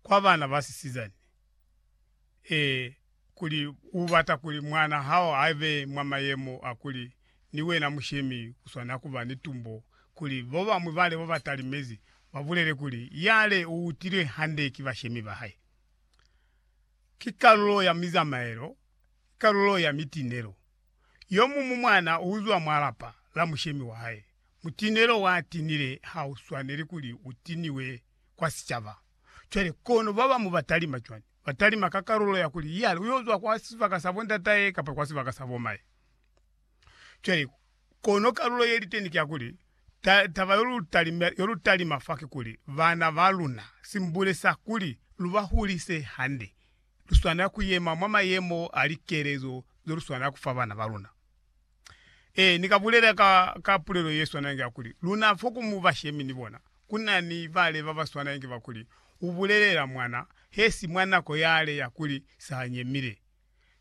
kwa bana ba sisizani, ee, kuli u bata kuli mwana hao a be mwa mayemo a kuli ni wena mushemi u swanela ku ba ni tumbo, kuli bo bañwi ba lebo ba talimezi ba bulele kuli, Yale u utilwe hande ki bashemi ba hae. Ki kalulo ya mizamaelo, ki kalulo ya mitinelo. Yo muñwi mwana u zwa mwa lapa la mushemi wa hae. Mutinelo wa tinile ha u swaneli kuli u tiniwe kwa sicaba. Cwale, kono babamu batalima cwani? Batalima ka kalulo ya kuli, Yale uyozwa kwa sibaka sa bondatahe kapa kwa sibaka sa bomahe. Cwale, kono kalulo yeliteni ki ya kuli, ta, taba yolutalima, yolutalima fa kikuli, bana baluna, simbule sa kuli lubahulise hande, luswanela kuyema mwa mayemo a likelezo zeluswanela kufa bana baluna. Ee, ni ka bulela ka, ka pulelo ye swana inge ya kuli, Luna fo ku mu bashemi ni bona, ku na ni bale ba ba swana inge ba kuli, U bulelela mwana, he si mwa nako yale ya kuli sa ha nyemile.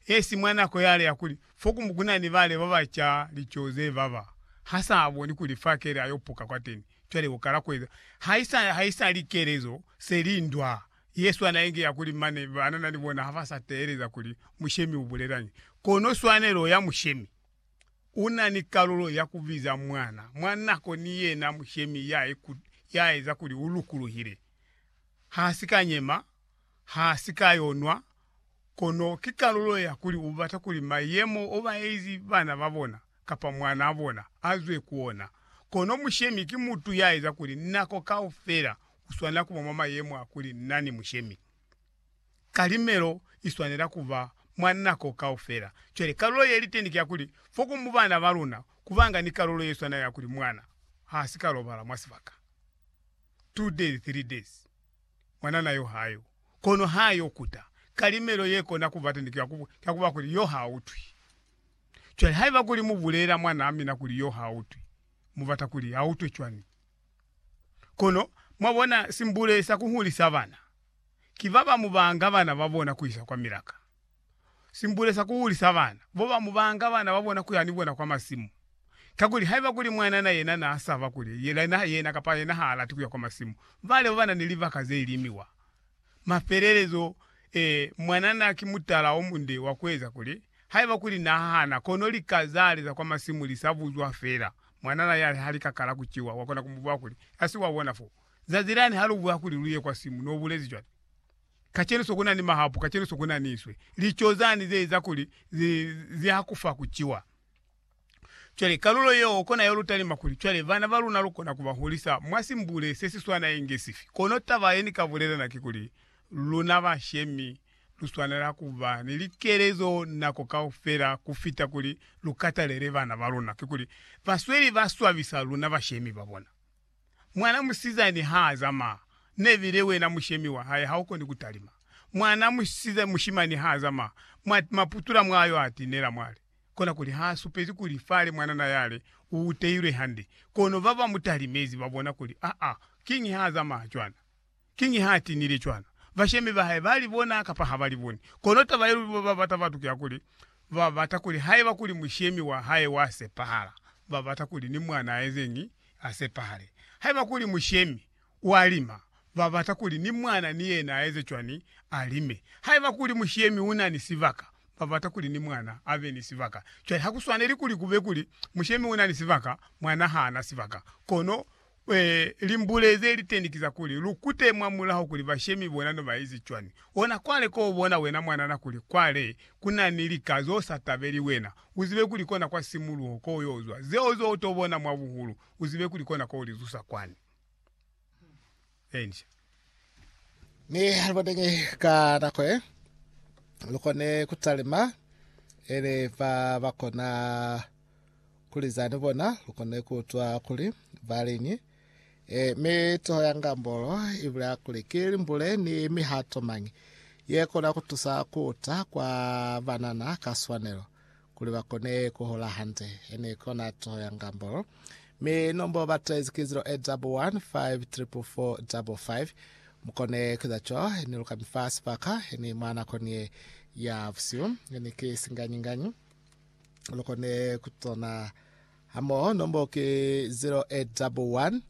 He si mwa nako yale ya kuli, fo ku, ku na ni bale ba ba ca lico ze baba, ha sa boni kuli fa kele a yo puka kwateni. Cwale u kala ku eza. Haisa, haisali kelezo se li ndwa. Yesu ana ingia kuli mane ba nana ni bona ha ba sa teeleza kuli mushemi u bulelañi. Kono swanelo ya mushemi, u na ni kalulo ya ku biza mwana mwa nako ni yena mushemi ya ya eza kuli u lukuluhile. Ha si ka nyema, ha si ka yo nwa, kono ki kalulo ya kuli u bata kuli mayemo o ba eizi bana ba bona kapa mwanaa bona a zwe ku ona. Kono mushemi ki mutu ya eza kuli nako kaufela uswanela kuba mwa mayemo a kuli na ni mushemi. Kalimelo iswanela kuba mwa nako kaufela. Cwale, kalulo ye liteni ki ya kuli, fo ku mu bana ba luna, kubanga ni kalulo ye swana ya kuli mwana ha si ka lobala mwa sibaka two days, three days, mwanana yo ha yo. Kono ha yo kuta, kalimelo ye kona kuba teni ki ya ku, ki ya kuba kuli yo ha utwi. Cwale, haiba kuli mu bulela mwanaa mina kuli yo ha utwi, mu bata kuli a utwe cwani? Kono, mwabona, simbule sa kuhulisa bana, ki babamubanga bana babona kuisa kwa milaka. Simbule sa kuhulisa bana, bobamubanga bana babona kuya ni bona kwa masimu. Kakuli, haiba kuli mwanana yena naasaba kuli yena kapa yena haalati kuya kwa masimu, bale babana ni libaka zeilimiwa. Mafelelezo, ee, mwanana ki mutala omunde wa kueza kuli, haiba kuli nahahana, kono lika zale za kwa masimu li sa buzwa feela, mwanana yale ha lika kala ku ciwa, wakona ku mubuzwa kuli, Asi wa bona foo, zazi lani ha lu buha kuli lu ye kwa simu, no bulezi cwale, Kacenu so kuna ni mahapu, kacenu so kuna ni iswe, lico zani ze eza kuli zi, zi hakufa ku ciwa. Cwale, kalulo yeo kona yo lutalima kuli cwale bana ba luna lukona ku ba hulisa mwa simbule se si swana inge sifi. Kono taba ye ni ka bulela na ki kuli, luna bashemi lu swanela ku ba ni likelezo nako kaufela ku fita kuli lu katalele bana ba luna. Kikuli, basweli ba swabisa luna bashemi ba bona. Mwana musizani ha a zamaya, nebile wena mushemi wa hae ha u koni ku talima. Mwana mushimani ha a zamaya, mwa putula mwa yo a tinela mwali. kona kuli ha supezi kuli fale mwanana yale u teilwe hande. Kono ba ba mu talimezi ba bona kuli, Aa, kiñi ha zamaya cwana? Kiñi ha tinile cwana? Bashemi ba hae ba li bona kapa ha ba li boni? Kono taba ye luli ba bata batu ki ya kuli, ba bata kuli haiba kuli mushemi wa hae wa sepahala, ba bata kuli ni mwana a ezeñi? A sepahale. Haiba kuli mushemi wa lima, ba bata kuli ni mwana ni yena a eze cwani? A lime. Haiba kuli mushemi u na ni sibaka, ba bata kuli ni mwana a be ni sibaka. Cwale ha ku swaneli kuli ku be kuli, mushemi u na ni sibaka, mwana ha a na sibaka. Kono, ee, limbule ze li teni ki za kuli, lu kute mwa mulaho kuli bashemi bona no ba ezi cwani. Ona kwale ko u bona wena mwanana kuli kwale ku na ni lika z'o sa tabeli wena. U zibe kuli kona kwa simuluho ko u y'o zwa. Zeo z'o u t'o bona mwa buhulu, u zibe kuli kona ko u li zusa kwani. Enje. Mi halibateñi ka nako ye lukone kutalima ele ba bakona kulizani bona lukone kutwa kuli baliñi e mi toho ya ngambolo ibula kuli ki limbule ni mihato mañi ye kona kutusa kuta kwa banana ka swanelo Kuli ba kone ku hola hande, ye ne kona toho ya ngambolo. Mi nombo ba tezi ki 0811 544555. Mu kone ku eza co ni lu ka mi fa sibaka, ye ni mwa nakoni ye ya busihu, ye ni ki singanyi-nganyi. Lu kone ku tona hamoho. Nombo ki 0811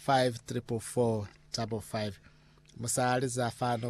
544555. Mu sa liza fa nombo.